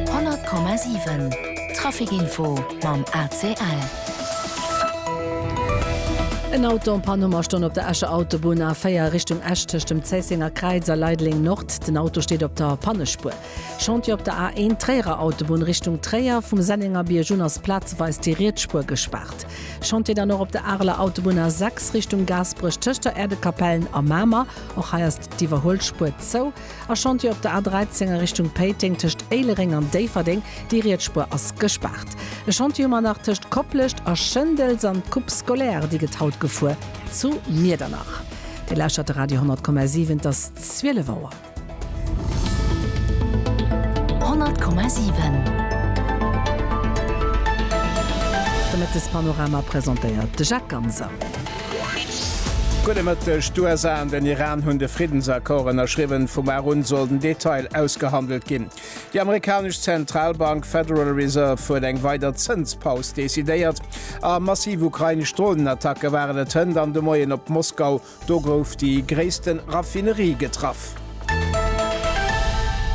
100,7 Trafic-Info mam ACL. En Auto an Pann, hu mer stonn op der Escher Autobunn, A4 Richtung Esch tëscht dem Zéissenger Kräiz a Leideleng Nord. Den Auto steet op der Pannespuer. Chantier op der A1 Tréierer Autobunn Richtung Tréier, vum Sennengerbierg un ass plazeweis déi riets Spuer gespaart. Chantier dann och op der Areler Autobunn A6 Richtung Gaasperech tëscht der Äerdekapellen a Mamer, och hei ass d'Iwwerhuelspuer zou. E Chantier op der A 13 a Richtung Péiteng tëscht Éilereng an Déifferdeng, déi Rietsspuer ass gespaart. E Chantier um Anach tëscht Koplescht a Schëndels an d'Coupe scolaire, déi gëtt haut gefuer zu Miedernach. Dir lauschtert de Radio 10,7, et ass 12 Auer. 10,7 De Mëttespanorama presentéiert de Jacques Ganser. Gudde Mëtteg. D'USA an den Iran hunn de Friddensaccord ënnerschriwwen. Vu mar un soll den Detail ausgehandelt ginn. Déi amerikanesch Zentralbank Federal Reserve huet eng weider Zënspaus decidéiert. A massiv ukrainesch Dronenattacke waren et hënt an de Moien op Moskau. Do gouf déi gréisste Raffinerie getraff.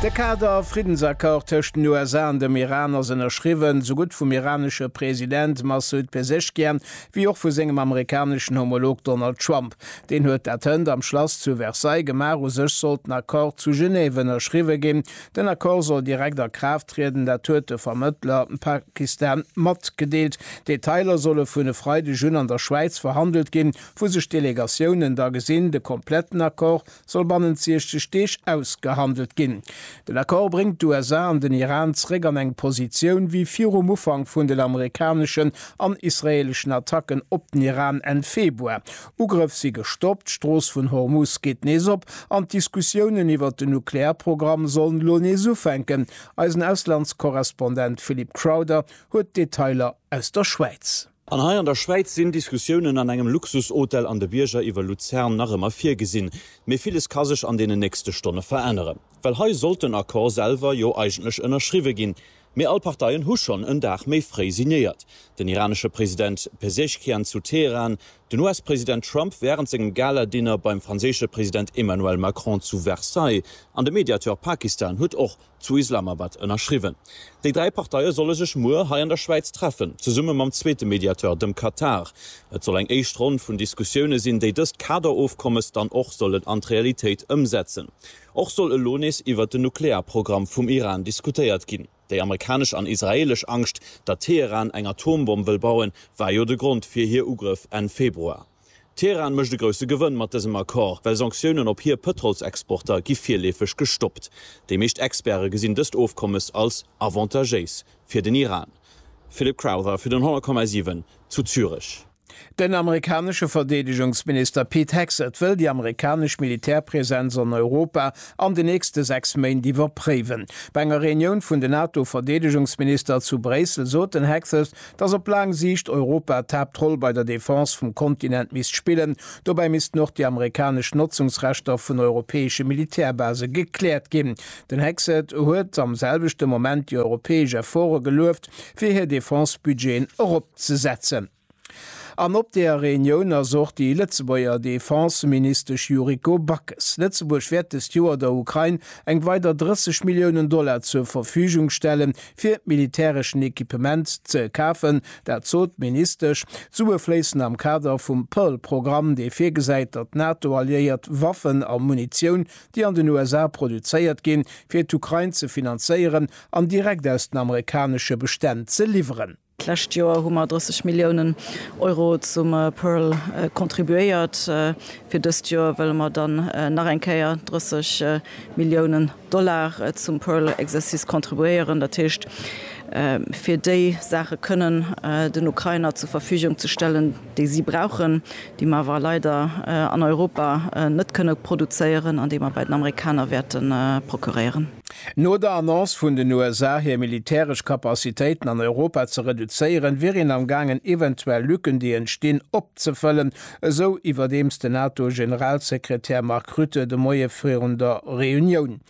De Kader Friddensaccord tëscht den USA an dem Iran ass ënnerschriwwen, esougutt vum iranesche President Massoud Pezeshkian, wéi och vu sengem amerikaneschen Homolog Donald Trump. Deen huet dat hënt am Schlass zu Versailles gemaach. U sech sollt den Accord zu Genève ënnerschriwwe ginn. Den Accord soll direkt a Kraaft trieden, dat huet de Vermëttler Pakistan matgedeelt. D'Detailer solle vun e Freideg un an der Schwäiz verhandelt ginn, wou sech d'Delegatiounen da gesinn. De kompletten Accord soll bannent 60 Deeg ausgehandelt ginn. Den Accord bréngt d'USA an den Iran zeréck an eng Positioun wéi virum Ufank vun den amerikaneschen an israeeleschen Attacken op den Iran Enn Februar. Ugrëff si gestoppt, d'Strooss vun Hormuz geet nees op an d'Diskussiounen iwwert den Nuklearprogramm sollen elo nees ufänken. Eisen Auslandskorrespondent Philip Crowther huet d'Detailer aus der Schwäiz. An hei an der Schwäiz sinn Diskussiounen an engem Luxushotel an de Bierger iwwer Luzern nach ëmmer virgesinn. Mee villes ka sech an deenen nächste Stonne veränneren. Well hei sollt den Accord selwer jo eigentlech ënnerschriwwe ginn. Mee all Parteien hu schonn en Dag méi fréi signéiert. Den iranesche President Pezeshkian zu Teheran, den US-President Trump wärend sengem Gala-Dinner beim franséische President Emmanuel Macron zu Versailles an de Mediateur Pakistan huet och zu Islamabad ënnerschriwwen. Déi dräi Parteie solle sech muer hei an der Schwäiz treffen, zesumme mam zweete Mediateur, dem Katar. Et soll eng éischt Ronn vun Diskussioune sinn, déi dëst Kaderofkommes dann och sollen an d'Realitéit ëmsetzen. Och soll elo nees iwwert den Nuklearprogramm vum Iran diskutéiert ginn. Déi amerikanesch an israeelesch Angscht, datt Teheran eng Atombomm wëll bauen, war jo de Grond fir hir Ugrëff Enn Februar. D'Teheran mécht e grousse Gewënn mat dësem Accord, well Sanktiounen op hir Pëtrolsexporter gi virleefeg gestoppt. Déi meescht Experte gesinn dëst Ofkommes als avantagéis fir den Iran. Philip Crowther fir den 10,7 zu Zürech. Den amerikanesche Verdeedegungsminister Pete Hegseth wëll déi amerikanesch Militärpresenz an Europa an de nächste 6 Méint iwwerpréiwen. Bei enger Reunioun vun den NATO-Verdeedegungsminister zu Bréissel sot den Hegseth, dass op laang Siicht Europa d'Haaptroll bei der Defense vum Kontinent misst spillen. Dobäi missten och déi amerikanesch Notzungsrechter vun europäesche Militärbase gekläert ginn. Den Hexet huet am selwechte Moment déi europäesch Efforte gelueft, fir hir Defense-Budgeten eropzesetzen. An op där Reunioun ass och déi Lëtzebuerger Defense-Ministesch Yuriko Backes. Lëtzebuerg wäert dëst Joer der Ukrain eng weider 30 Milliounen Dollar zur Verfügung stellen, fir militäreschen Equipement ze kafen, dat sot d'Ministesch. D'Sue fléissen am Kader vum Pearl-Programm, dee virgesäit, datt d'NATO-Alliéiert Waffen a Munitioun, déi an den USA produzéiert ginn, fir d'Ukrain ze finanzéieren an direkt aus den amerikanesche Bestänn ze liwweren. D'lescht Joer hu mer 30 Milliounen Euro zum PEARL contribuéiert. Fir dëst Joer wëlle mer dann nach eng Kéier 30 Milliounen Dollar zum PEARL-Exercice contribuéieren, dat heescht, fir déi Saache kënnen den Ukrainer zur Verfügung ze stellen, déi si brauchen, déi mer awer leider an Europa net kënne produzéieren an déi mer bei den Amerikaner wäerte procuréieren. No der Annonce vun den USA, hir militäresch Capacitéiten an Europa ze reduzéieren, wier een am gaangen eventuell Lücken, déi entstinn, opzefëllen, esou iwwerdeems den NATO-Generalsekretär Mark Rutte de Moie virun der Reunioun.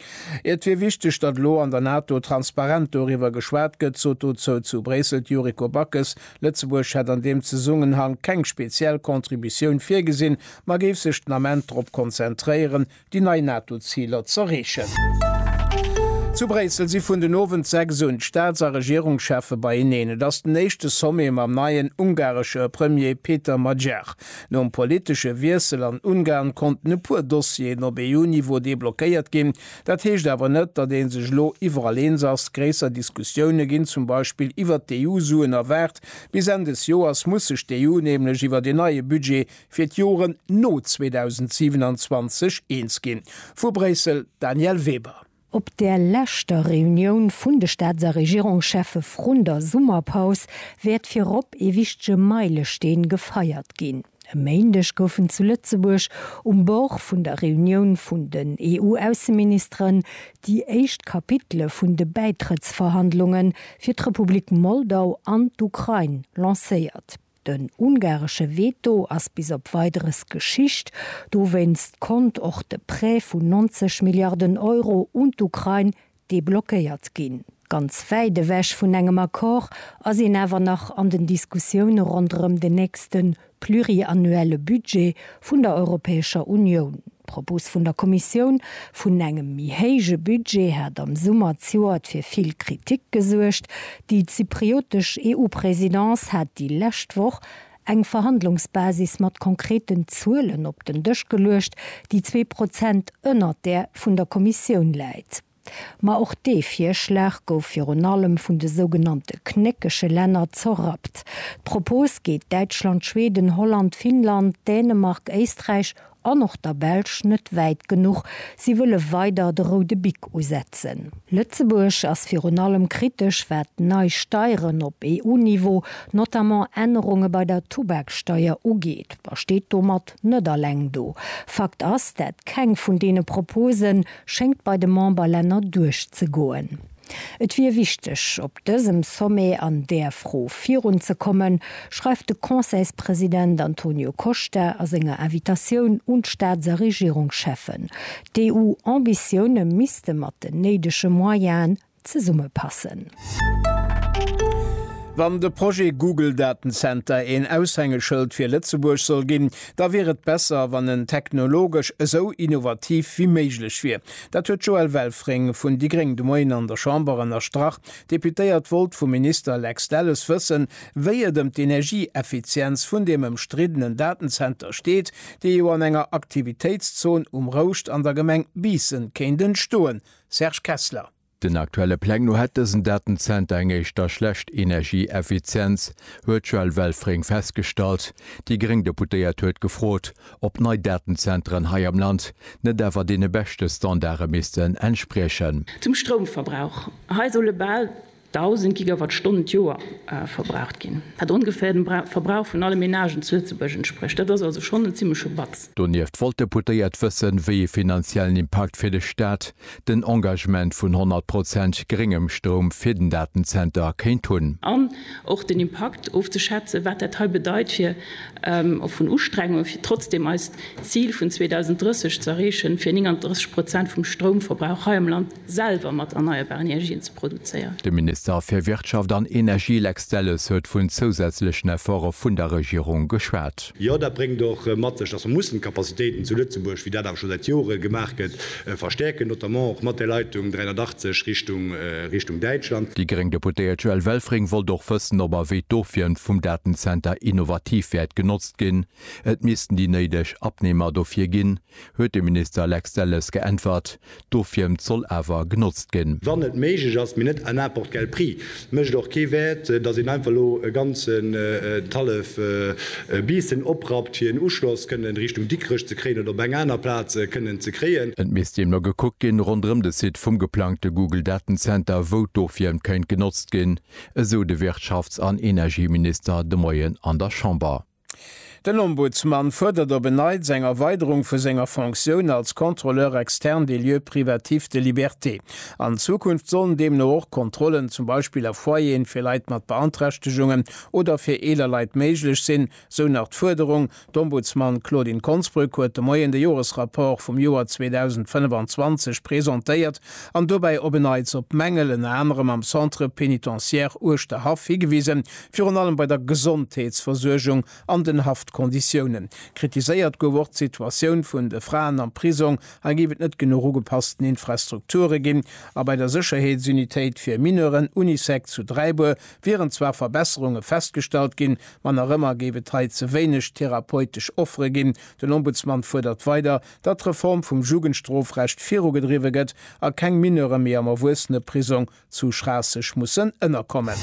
Et wier wichteg, datt elo an der NATO transparent doriwwer geschwat gëtt, sot dozou zu Bréissel d'Yuriko Backes, Lëtzebuerg hätt an deem Zesummenhank keng speziell Contributioun virgesinn, ma géif sech den Ament drop konzentréieren, déi nei NATO-Ziler z'erreechen. Zu Bréissel si vun den Owend 6 un d'Staats a Regierungscheffe beieneen. Et ass den éischte Sommet mam neien ungaresche Premier Péter Magyar. Nom politesche Wiessel an Ungarn konnten e puer Dossieren op EU-Niveau deblockéiert ginn, Dat heescht awer net, datt ee sech elo iwwerall eens ass. Gréisser Diskussioune ginn zum Beispill iwwert d'EU-Suen a waart bis Enn des Joers muss sech d'EU nämlech iwwert een neie Budget fir d'Joren no 2027 eens ginn. Vu Bréissel, Danièle Weber. Op der leschter Reunioun vun de Staats a Regierungscheffe vrun der Summerpaus wäert virop ee wichtege Meilesteen gefeiert ginn. E Méindeg goufen zu Lëtzebuerg um Bord vun der Reunioun vun den EU-Ausseministeren déi éischt Kapitele vun de Bäitrëttsverhandlunge fir d'Republik Moldau an d'Ukrain lancéiert. Den ungaresche Veto ass bis op Weideres Geschicht. Dowéinst konnt och de Prêt vun 90 Milliarden Euro un d'Ukrain deblockéiert ginn. Ganz wäit ewech vun engem Accord ass een awer nach an den Diskussioune ronderëm den nächste pluriannuelle Budget vun der Europäescher Unioun. D'Propos vun der Kommissioun vun engem méi héije Budget hat am Summer zejoert fir vill Kritik gesuergt. Déi zypriotesch EU-Presidence hat déi lescht Woch Eng Verhandlungsbasis mat konkreten Zuelen op den Dësch geluecht, déi zwee Prozent ënnert där vun der Kommissioun läit. Ma och dee Virschlag gouf virun allem vun de sougenannte knéckege Länner zerrappt. D'Propos geet Däitschland, Schweden, Holland, Finnland, Dänemark, Éisträich An och der Belsch net wäit genuch, si wëlle weider de roude Bic usetzen. Lëtzebuerg ass virun allem kritesch wat nei Steieren op EU-Niveau, notamment Ännerunge bei der Tubaksteier ugeet, a steet domat net alleng do. Fakt ass, dat keng vun deene Proposen schéngt bei de Memberlänner duerchzegoen. Et wier wichteg, op dësem Sommet an där Fro virun ze kommen, schreift de Conseilspresident Antonio Costa a senger Invitatioun un d'Staats a Regierungscheffen. D'EU-Ambitioune misste mat den néidege Moyenen zesummepassen. Wann de Projet Google Datenzenter een Aushängeschëld fir Lëtzebuerg soll ginn, da wier et besser, wann en technologesch esou innovativ wéi méiglech wier. Dat huet d'Joëlle Welfring vun déi gréng de Moien an der Chamber ënnerstrach. D'Deputéiert wollt vum Minister Lex Delles wëssen, wéi et ëm d'Energieeffizienz vun deem ëmstriddenen Datenzenter steet, dee jo an enger Aktivitéitszon um Rouscht an der Gemeng Biissen kéint entstoen. Serge Kessler. Den aktuelle Pläng no hätt dësen Datenzenter eng éischter schlecht Energieeffizienz, huet d'Joëlle Welfring festgestallt. Déi gréng Deputéiert huet gefrot, ob nei Datenzenteren hei am Land net awer deene beschte Standarde missten entspriechen. Zum Stroumverbrauch, Hei solle bal 1.000 Gigawattstonnen d'Joer verbraucht ginn, wat ongeféier dem Verbrauch vun alle Menagen zu Lëtzebuerg entsprécht. Dat ass also schonn en zimmleche Batz. Donieft wollt d'Deputéiert wëssen, wéi ee finanziellen Impakt fir de Staat den Engagement vun 100 Prozent gréngem Stroum fir den Datenzenter kéint hunn. An och den Impakt ofzeschätzen, wat dat hei bedeit fir, och vun Ustrengunge fir trotzdeem eist Zil vun 2030 ze erreechen, fir 39 Prozent vum Stroumverbrauch hei am Land selwer mat erneierbaren Energien ze produzéieren. De Minister fir Wirtschaft an Energie Lex Delles huet vun zousätzlechen Efforte vun der Regierung geschwat. Jo, dat bréngt och mat sech, dass mer mussen d'Capacitéiten zu Lëtzebuerg, wéi dat awer scho säit Jore gemaach gëtt, Verstäerken, notamment och mat der Leitung 380 Richtung Richtung Däitschland. Déi gréng Deputéiert Joëlle Welfring wollt och wëssen, ob a wéi d'Ofwieren vum Datenzenter innovativ wäert genotzt ginn. Et missten déi néideg Abnehmer dofir ginn, huet de Minister Lex Delles geäntwert. D'Ofwiermt soll awer genotzt ginn. Wann et méiglech ass, mee net à n'importe quel prix. Mécht och kee Wäert, datt een einfach elo e ganzen d'hallef Biissen oprappt, fir en Uschloss kënnen Richtung Dikrech ze kréien oder op eng aner Plaz kënnen ze kréien. Et misst deemno gekuckt ginn, ronderëm de Site vum geplangte Google Datenzenter, wou d'Ofwierm kéint genotzt ginn, esou de Wirtschafts an Energieminister de Moien an der Chamber. Den Ombudsman fuerdert op en Neits eng Erweiderung vu senger Fonctioun als Contrôleur externe des lieux privatifs de liberté. An Zukunft sollen deemno och Kontrollen zum Beispill a Foyeren fir Leit mat Beanträchtegungen oder fir eeler Leit méiglech sinn, sou nach d'Fuerderung. D'Ombudsman Claudine Konsbrück huet de Moien de Joresrapport vum Joer 2025 presentéiert an dobäi op en Neits op Mängel, ënner anerem am Centre pénitentiaire Uerschterhaff, higewisen, Virun allem bei der Gesondheetsversuergung an den Haftkonditiounen. Kritiséiert gouf och d'Situatioun vun de Fraen am Prisong. Hei géif et net genuch ugepassten Infrastrukture ginn. A bei der Sécherheetsunitéit fir Mineuren, Unisec, zu Dräibuer wieren zwar Verbesserunge festgestallt ginn, ma nach ëmmer géif et hei ze wéineg therapeutesch Offere ginn. Den Ombudsman fuerdert weider, datt d'Reform vum Jugendstrofrecht virugedriwwe gëtt a keng Mineure méi am Erwuesseneprisong zu Schraasseg mussen ënnerkommen.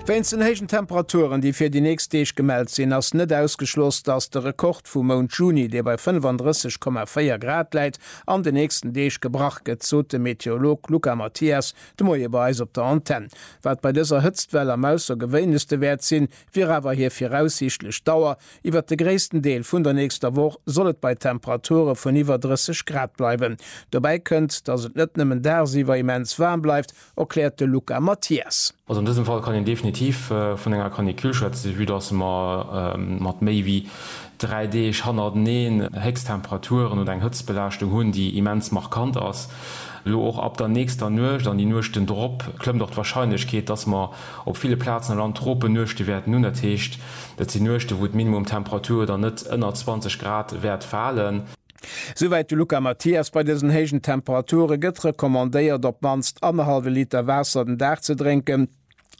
Wéinst den héijen Temperaturen, déi fir déi nächst Deeg gemellt sinn, ass net ausgeschloss, dass de Rekord vum Mount Juni, dee bei 35,4 Grad läit, an den nächsten Deeg gebrach gëtt, sot de Meteorolog Luca Mathias de Moie bei eis op der Antenn. Wat bei dëser Hëtztwell am Aussergewéinlechste wäert sinn, wier awer hir viraussiichtlech Dauer, Iwwert de gréissten Deel vun der nächster Woch soll et bei Temperature vun iwwer 30 Grad bleiwen. Dobäi kënnt, dass et net nëmmen dagsiwwer immens waarm bleift, erkläert de Luca Mathias. Also an dësem Fall kann een definitiv vun enger Canicule schwätzen, vue dass mer mat méi wéi dräi Deeg hannerteneen Héchsttemperaturen oder eng Hëtztbelaaschtung hunn, déi immens markant ass. Elo och ab der nächster Nuecht an déi Nuechten drop klëmmt och d'Warscheinlechkeet, dass mer Op ville Plazen am Land drope Nuechtewäerten un, dat heescht, et sinn Nuechten, wou d'Minimumtemperature dann net ënner 20 Grad wäert falen. Souwäit de Luca Mathias. Bei dësen héijen Temperature gëtt recommandéiert, op d'mannst annerhallwe Liter Waasser den Dag ze drénken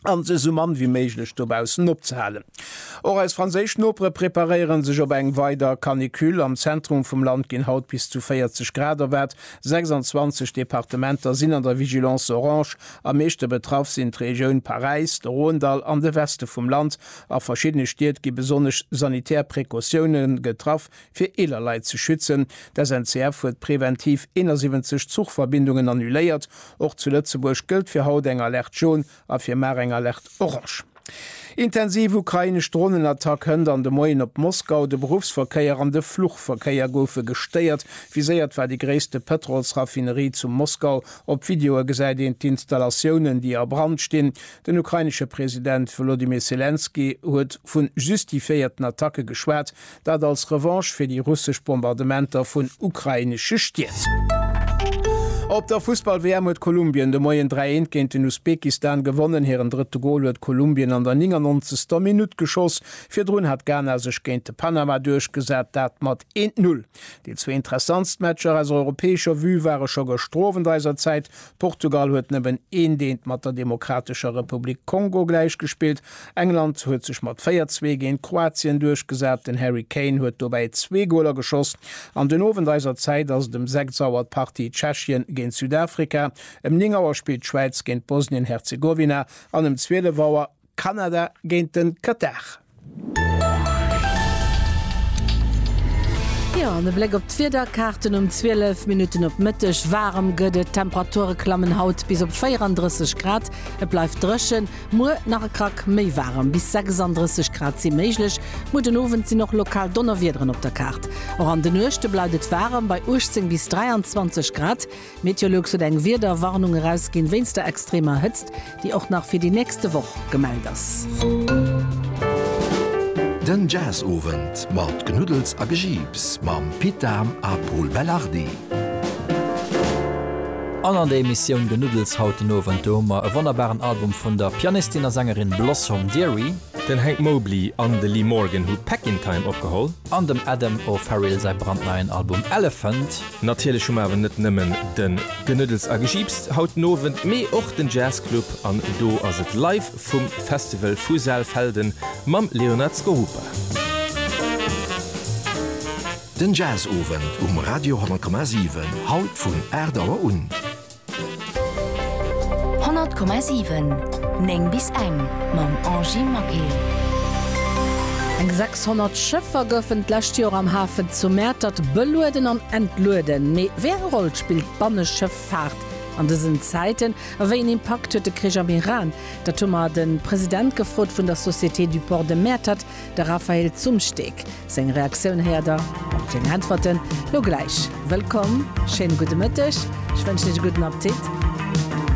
a sech esou mann wéi méiglech dobaussen opzehalen. Och eis franséisch Nopere preparéiere sech op eng weider Canicule. Am Zentrum vum Land ginn haut bis zu 40 Grad erwaart. 26 Departementer sinn an der Vigilance orange. Am meeschte betraff sinn d'Regioun Paräis, de Rhône-Dall an de Weste vum Land. A verschiddene Stied gi besonnesch sanitär Precautioune getraff, fir eeler Leit ze schützen. D'SNCF huet preventiv 71 Zuchverbindungen annuléiert. Och zu Lëtzebuerg gëllt fir haut eng Alerte Jaune a fir mar eng Alerte Orange. Intensiv ukrainesch Dronenattack hënt an de Moien op Moskau, de Beruffsverkéier an de Fluchverkéier goufe gestéiert. Viséiert war déi gréisste Pëtrolsraffinerie zu Moskau. Op Videoe gesäit een d'Installatiounen, déi a Brand stinn. Den ukrainesche President Wolodymyr Selenskyj huet vu justifiéierten Attacke geschwat, Dat als Revanche fir déi russesch Bombardementer vun ukrainesche Stied. Op der Fussball-WM huet Kolumbien de Moien 3, 1 géint den Usbekistan gewonnen. Hiren drëtte Gol huet Kolumbien an der 99. Minutt geschoss. Virdrun hat Ghana sech géint de Panama duerchgesat, dat mat 1, 0. Déi zwee interessantst Matcher aus europäescher Vue ware scho gëschter Owend eiser Zäit Portugal huet nëmmen een Deent mat der Demokratescher Republik Kongo gläichgespillt. England huet sech mat 4, 2 géint Kroatien duerchgesat. Den Harry Kane huet dobäi zwee Goler geschoss. An den Owend eiser Zäit ass et em 6 Auer d'Partie Tschechien géint Südafrika, em 9 Auer spillt d'Schwäiz géint Bosnien-Herzegowina an em 12 Auer, Kanada géint de Katar. Jo, an e Bléck op d'Wiederkaarten um 12 Minutten op Mëtteg. Waarem gëtt et, d'Temperature klammen haut bis op 34 Grad. Et bleift dréchen, muer nach e Krack méi waarem, bis 36 Grad si méiglech. Muer den Owend sinn och lokal Donnerwiederen op der Kaart. Och an de Nuechte bleift et waarem, bei 18 bis 23 Grad. Meteolux huet eng Wiederwarnung erausginn wéinst der extremer Hëtzt, déi och nach fir déi nächste Woch gemellt ass. Den Jazzowend mat Knuddels a Gejiips mam Pit Dahm a Pol Belardi. An an der Emissioun Genuddels haut den Owend, do hu mer e wonnerbaren Album vun der Pianistin a Sängerin Blossom Dearie. Den Hank Mobley an de Lee Morgan hu Back In Time opgeholl. An dem Adam O'Farrill säi brandneien Album Elephant. Natierlech hu mer awer net nëmmen den Genödels a Gejiips haut den Owend, mee och den Jazz Club an do ass et live vum Festival vu Saalfelden mam Leonard Skorupa. Den Jazz Owend um Radio 10,7 haut vun 8 Auer un. 100,7 9 bis eng mam Angie Maquet. Eng 600 Schëffer goufen d'lescht Joer am Hafen zu Mäertert belueden an entlueden. Mee wéi eng Roll spillt d'Banneschëffaart an dësen Zäiten a wéi een Impakt huet de Krich am Iran? Dat hu mer de President gefrot vun der Société du Port de Mäertert, De Raphael Zumsteeg, seng Reaktioun héiert der op seng Äntwerten lo gläich. Wëllkomm, schéine gudde Mëtteg, ech wënschen Iech e gudden Appetit.